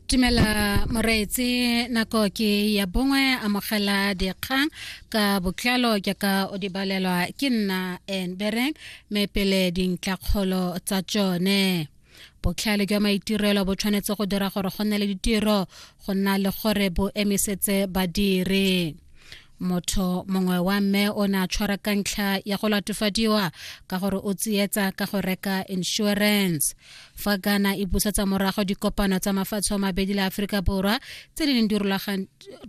Tumela Moreetse nako ke ya bongwe amogela dikgang ka botlalo jaaka o di balelwa ke nna Enbereng me pele dintlakgolo tsa tsone botlhale jwa maitirelo bo tshwanetse go dira gore go nne le ditiro go nna le gore bo emisetse badiri motho mongwe wa mme o ne a tshwara ka ntlha ya go latofadiwa ka gore o tsietsa ka go reka insurance fa ghana e busetsa morago dikopano tsa mafatshe a mabedi le aforika borwa tse di neng di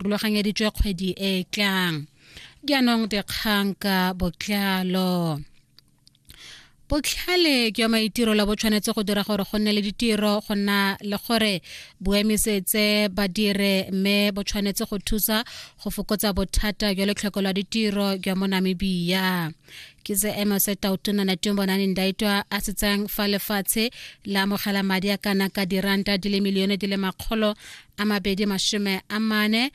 rulaganyeditswe kgwedi e e tlang jaanong dikgang ka botlalo botlhale jwa maitirelo bo tshwanetse go dira gore go nne le ditiro go nna le gore boemisetse ba dire mme bo tshwanetse go thusa go fokotsa bothata jwa letlhoko la ditiro jwa mo namibia ke se ema se tautona na teng bona neng daitwa a se tsang fa lefatshe la amogela madi a kana ka diranta di le milione di le makgolo a mabedi mashome a mane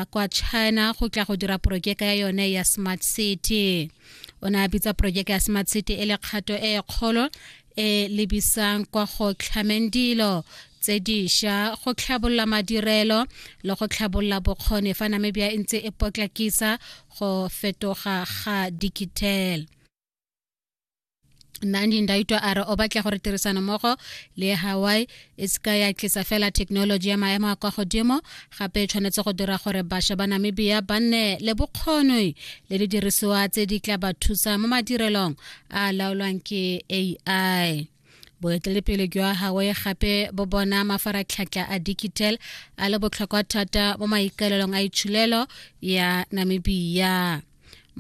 kwa china go tla go dira porojeka ya yone ya smart city o ne a bitsa porojeke ya smart city e le kgato e e kgolo e lebisang kwa go tlhameng dilo tse diša go tlhabolola madirelo le go tlhabolola bokgoni fa namibia e ntse e potlakisa go fetoga ga digital nandi ndaitwa a re o batla gore tirisano mmogo le hawaii e se ka ya tlisa fela thekenoloji ya maemo a kwa godimo gape e tshwanetse go dira gore bašwa ba namibia ba nne le bokgoni le didirisiwa tse di tla ba thusa mo madirelong a laolwang ke ai boeteledipele jwa hawaii gape bo bona mafaratlhatlha a digital a le botlhokwa thata mo maikaelelong a itshulelo ya namibia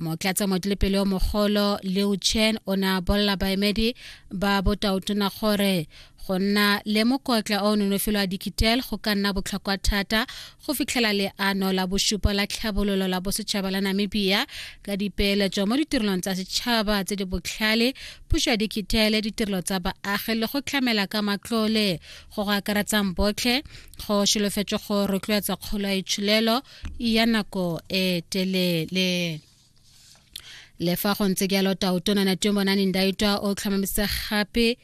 motlatsa motilepele o mogolo leo chen o ne a bolela baemedi ba botaotona gore go nna le mokotla o nonofelo wa dikitel go ka nna botlhokwa thata go fitlhela leano la bosupa la tlhabololo la bosetšhaba la namibia ka dipeeletso mo ditirelong tsa setšhaba tse di botlhale puso ya dikitele ditirelo tsa baagi le go tlamela ka matlole go go akaretsang botlhe go solofetswe go rotloetsa kgolo ya itsholelo ya nako e telele le fa go ntse jalo taotona na temo na nindaitwa o tlhomamisa gape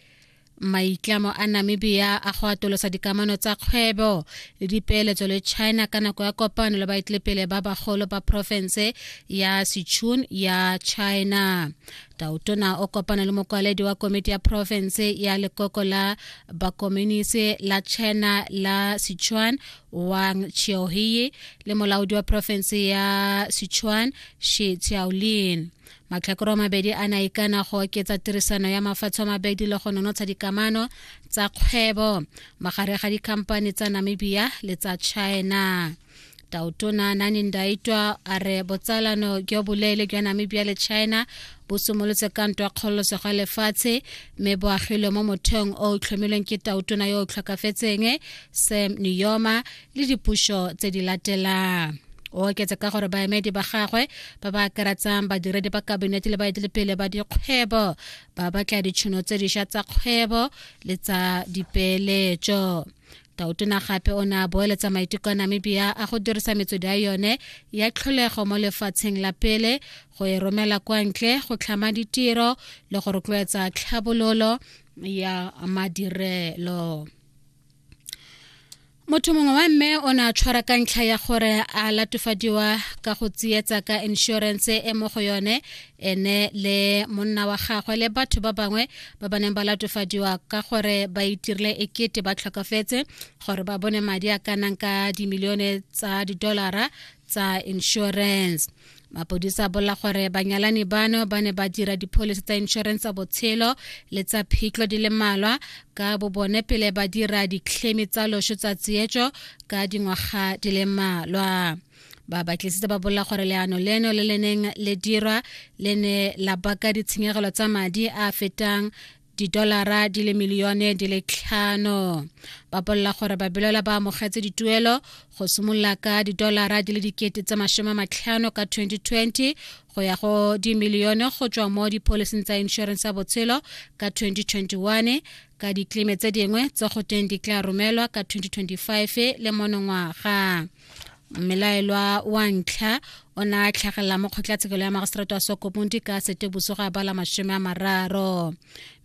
maitlamo a namibia a go atolosa dikamano tsa kgwebo le dipeeletso le china ka nako ya kopano le baetlepele ba bagolo ba porofense ya sichun ya china tautona o kopana le mokwaledi wa komiti ya porofense ya lekoko la bakominisi la china la sichuan Wang Qiaohie le molaodi wa porofense ya Sichuan Shi Qiaolin. Matlhakoro mabedi a na ikana go oketsa tirisano ya mafatshe a mabedi le go nonotsha dikamano tsa kgwebo magare ga dikhamphane tsa Namibia le tsa China. Tautona Nani Ndaitwa a re botsalano jo boleele jwa Namibia le China bo simolotse ka ntwa kgololosego ya lefatshe mme bo agilwe mo motheong o o tlhomilweng ke tautona yo o tlhokafetseng sam niyoma le dipušo tse di latelang o oketse ka gore baemedi ba gagwe ba ba akaratsang badiredi ba kabinete le baetelepele ba dikgwebo ba batla ditšhono tse dišwa tsa kgwebo le tsa dipeeletšo tautona gape o ne a boeletsa maiteko a namibia a go dirisa metswedi ya yone ya tlholego mo lefatsheng la pele go e romela kwa ntle go tlhama ditiro le go rotloetsa tlhabololo ya madirelo motho mongwe wa mme o ne a tshwara ka ntlha ya gore a latofadiwa ka go tsietsa ka inšorense e mo go yone ene le monna wa gagwe le batho ba bangwe ba ba neng ba latofadiwa ka gore ba itirile ekete ba tlhokafetse gore ba bone madi a ka nang ka dimilione tsa didolara tsa insurance mapodisa bola gore banyalani bano ba ne ba dira dipholisi tsa insurance tsa botshelo le tsa phitlho di le malwa ka bobone pele ba dira ditlhemi tsa loso tsa tsietso ka dingwaga di le malwa ba batlisitse ba bolela gore leano leno le le neng le dirwa le ne la baka ditshenyegelo tsa madi a fetang didolara di le milione di le tlhano ba bolela gore babelela ba amogetse dituelo go simolola ka didolara di le dikete tse masome matlhano ka 2020 go ya go dimilione go tswa mo dipholising tsa inšorense ya botshelo ka 2021 ka ditlime tse dingwe tse go teng di tla romelwa ka 2025 le monongwaga mmelaelwa wa ntlha o ne a tlhagelela mo kgotlatshekelo ya magisereto wa sokomundi ka seteboso ga bala masome a mararo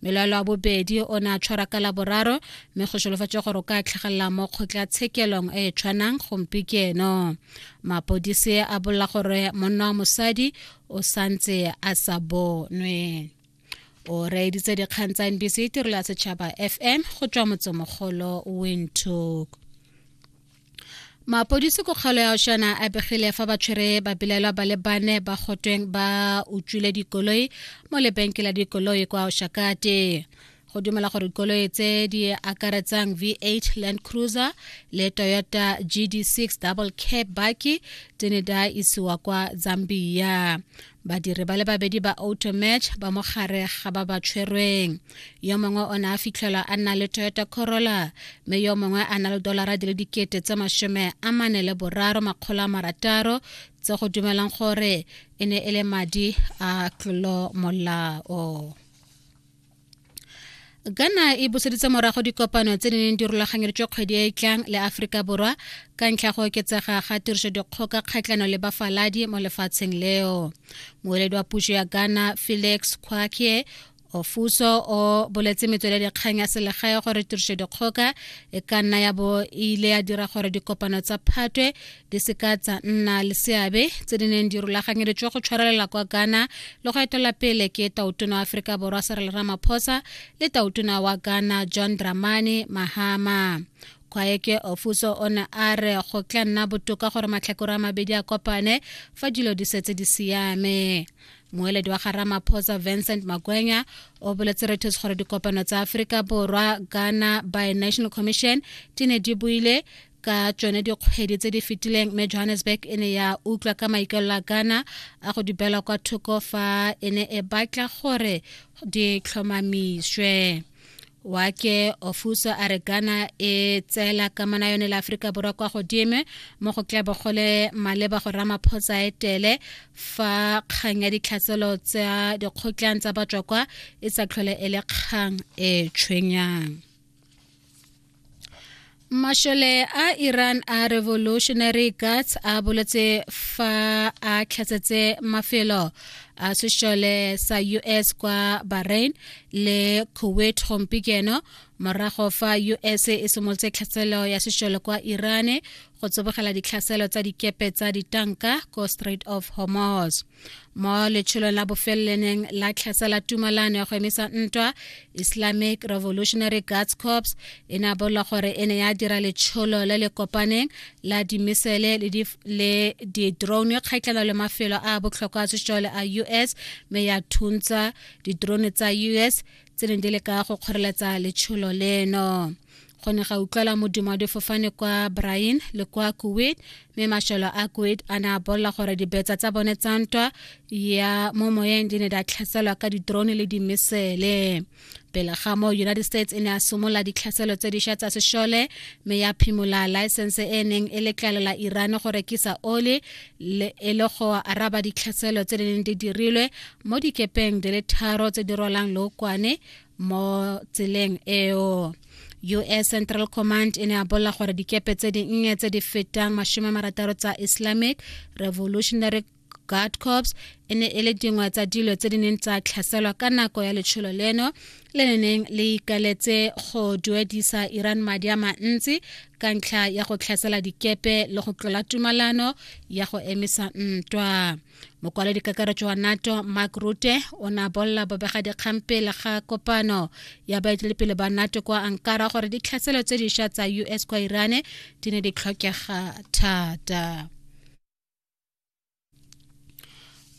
mmelaelwa wa bobedi o ne a tshwara ka laboraro mme go solofatse gore o ka tlhagelela mo kgotlatshekelong e e tshwanang gompikeno mapodisi a bolela gore monna wa mosadi o santse a sa bonwe o reeditse dikgang tsa nbc tirelo ya setšhaba fm go tswa motsemogolo windhoek mapodisi ko kgalo ya oshana a begile fa ba tshwere babelaelwa ba le bane ba gotweng ba utswile dikoloi mo lebenke la dikoloi kwa oshakate go dumela gore dikoloi tse di akaretsang v8 land cruiser le toyota gd6 double cab baki tse ne da isiwa kwa zambia badiri ba le babedi ba automatch ba mo gare ga ba ba tshwerweng yo mongwe o ne a fitlhelwa a nna le toyota corolla mme yo mongwe a na le dolara di le dikete tse mashome a mane le boraro makgolo a marataro tse go dumelang gore e ne e le madi a tlolo molao ghana e buseditse morago dikopano tse di neng di rulaganyeditswe kgwedi e e tlang le aforika borwa ka ntlha go oketsega ga tiriso dikgoka kgatlhano le bafaladi mo lefatsheng leo moeledi wa puso ya ghana felix kwakie ofuso o boletse metsweledi kgang ya selegae gore tiriso dikgoka e ka nna ya bo e ile ya dira gore dikopano tsa phatwe di seka tsa nna le seabe tse di neng di rulaganyeditswe go tshwarelela kwa ghana le go etela pele ke tautona wa aforika borwa serele ramaphosa le tautona wa ghana john dramani mahama kwaeke ofuso o ne a re go tla nna botoka gore matlhakore a mabedi a kopane fa dilo di setse di siame moeledi wa ga ramaphosa vincent makwenya o boletse reuters gore dikopano tsa aforika borwa ghana by national commission di ne di buile ka tsone dikgwedi tse di fetileng mme johannesburg e ne ya utlwa ka maikalelo a kana a go dibela kwa thoko fa e ne e batla gore di tlhomamiswe wake ofuso a re ghana e tseela kamana yone le aforika borwa kwa godimo mo go tlabo gole maleba go ramaphosa etele fa kgang ya ditlhatselo tsa dikgotlang tsa batswa kwa e sa tlhole e le kgang e tshwenyang Mashole a Iran a Revolutionary Guards a boletse fa a tlhatsetse mafelo a sešole sa US kwa Bahrain le Kuwait gompieno morago fa US e simolotse tlhaselo ya sešole kwa Iran go tsebogela ditlhaselo tsa dikepe tsa ditanka ko Strait of Hormuz. mo letsholong la bofeleleneng la tlhasa la tumalano ya go emisa ntwa islamic revolutionary guards corps e ne a bolwa gore e ne ya dira letsholo le le kopaneng la dimisele le di-drone kgaitlhela le mafelo a botlhokwa a sešole a us mme ya thuntsa di-drone tsa us tse neng di le ka go kgoreletsa letsholo leno go ne ga utlwela modimo wa difofane kwa brain le kwa kuwait mme mashelo a kuwait a ne a bolela gore dibetsa tsa bone tsa ntwa ya mo moyeng di ne di a tlhaselwa ka ditrone le dimesele pele ga mo united states e ne a simolola ditlhaselo tse dišwa tsa sešole mme ya phimola laesense e neng e letlalela iran go rekisa oli e le go araba ditlhaselo tse di neng di dirilwe mo dikepeng di le tharo tse di rolang lookwane mo tseleng eo us central command e ne a bolela gore dikepe tse dinnye tse di fetang mashome marataro tsa islamic revolutionary guard corps e ne e le dingwe tsa dilo tse di neng tsa tlhaselwa ka nako ya letsholo leno le le neng le ikaletse go duedisa iran madi a mantsi ka ntlha ya go tlhasela dikepe le go tlola tumalano ya go emisa ntwa mokwaledi kakaretso wa nato mark rute o ne a bolela bobegadikgang pele ga kopano ya baetelepele ba nato kwa ankara gore ditlhaselo tse dišwa tsa us kwa irane di ne di tlhokega thata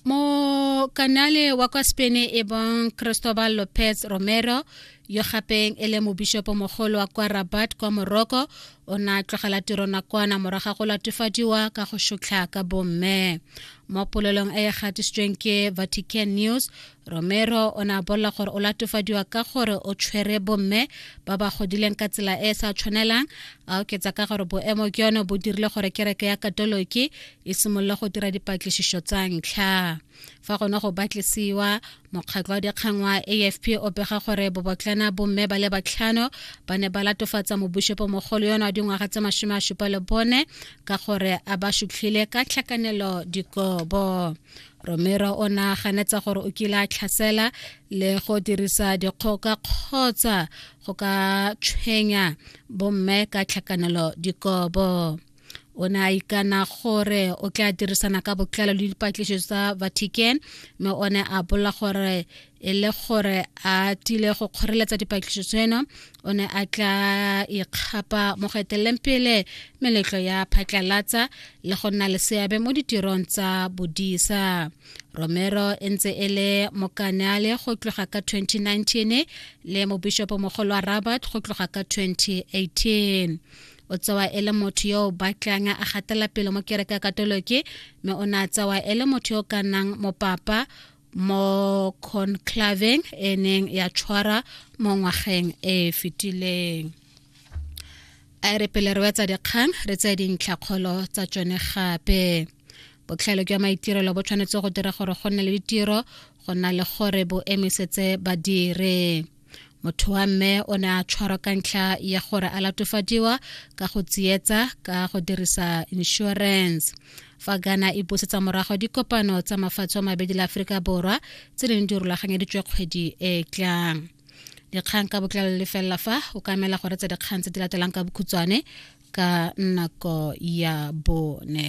mo kanale wa kwa spain e bong cristobal lopez romero yo gapeng e le mobishopomogolo wa kwa rabat kwa moroko o ne a tlogela tiro nakwana moraga go latofadiwa ka go šotlha ka bomme mo polelong e e gatisitsweng ke vatican news romero o ne a bolela gore o latofadiwa ka gore o tshwere bomme ba ba godileng ka tsela e e sa tshwanelang a oketsa ka gore boemo ke yone bo dirile gore kereke ya katoloki e simolole go dira dipatlisišo tsa ntlha fa gone go batlisiwa mokgatlho wa dikgang wa afp o pega gore bobotlana bomme ba le batlhano ba ne ba latofatsa mobushepo mogolo yone wa dingwaga tse masome a supa le bone ka gore a ba sutlhile ka tlhakanelo dikobo romero o ne a ganetsa gore o kile a tlhasela le go dirisa dikgoka kgotsa go ka tshwenya bomme ka tlhakanelo dikobo o ne a ikana gore o tla dirisana ka botlalo le dipatlišo tsa vatican mme o ne a bolela gore e le gore a tile go kgoreletsa dipatlišo tseno o ne a tla ikgapa mo go eteleleng pele meletlo ya phatlalatsa le go nna le seabe mo ditirong tsa bodisa romero e ntse e le mokaneale go tloga ka 2019 le mobishopo mogolo wa rabat go tloga ka 2018 o tsewa e le motho yo o batlang a gatela pele mo kereke ya katoloki mme o ne a tsewa e le motho yo o ka nnang mopapa mo conclaveng e neng ya tshwara mo ngwageng e e fetileng a e re pele re wetsa dikgang re tseye dintlhakgolo tsa tsone gape botlhale jwa maitirelo bo tshwanetse go dira gore go nne le ditiro go na le gore bo emisetse badire motho wa mme o ne a tshwarwa ka ntlha ya gore a latofadiwa ka go tsietsa ka go dirisa insurance fa ghana e busetsa morago dikopano tsa mafatshe a mabedi la aforika borwa tse ding di rulaganyeditswe kgwedi e tlang dikgang ka botlalo le felela fa o ka emela gore tse dikgang tse di latelang ka bokhutshwane ka nako ya bone